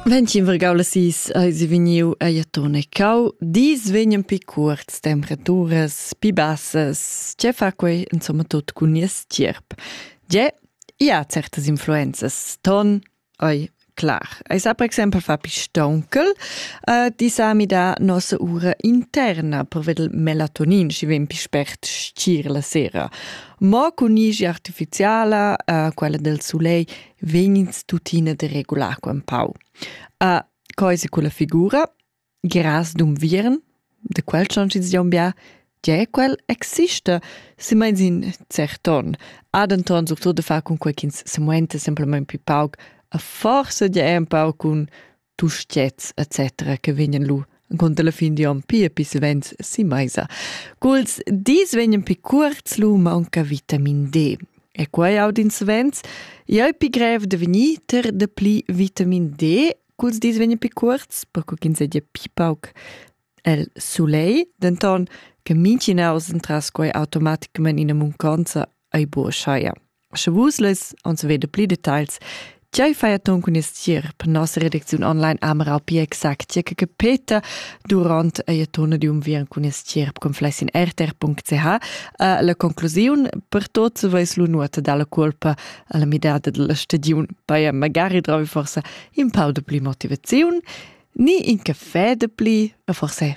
Ventin vergau las is eis vegniu ei atun e cau. Dis vegnan pi cuorts temperaturas, pi bassas. Tge fa quei insomma tut cun nies tgierp? Tge? Ja, certas influenzas. Ton, oi, clar. Eis ha per exempel fa pi stonkel, uh, di sa mi da nossa ura interna per vedel melatonin, schi vegn pi spert stgir la sera. Mo cun isch artificiala, uh, quella del sulei, vegnins tuttina da regular qua un pau. A coisa culla figura, gras d'unviern, da quel schon ci dion bia, Tge quel exista, se meins in cert ton. Ha denton surtut da far cun quei ch'ins semuenta semplament più pauc, a forsa gia è un pau cun tuschets etc. che vegnan lu encunter la fin di onn pia pis vents si meisa. Culs dis vegnan pi cuorts lu maunca vitamin D. E quei audins vents, ei pi grev de vegnir ter de pli vitamin D culs dis vegnan pi cuorts, perco ch'ins sedia pi pauc el sulei, denton che mincinaus entras quei automaticament ina munconza ei buca scheia. Sche vus less ons vede pli details, Tgei fai ton cun il stir per nossa redacziun online Amera più exactia che capeta durant ei tona di unviern cun il stir conflessin rtr.ch. Uh, la conclusiun per tots veis lu nuota dalla colpa alla midada della stagiun paia magari dravi forse in pau de pli motivaziun ni in caffè de pli, forse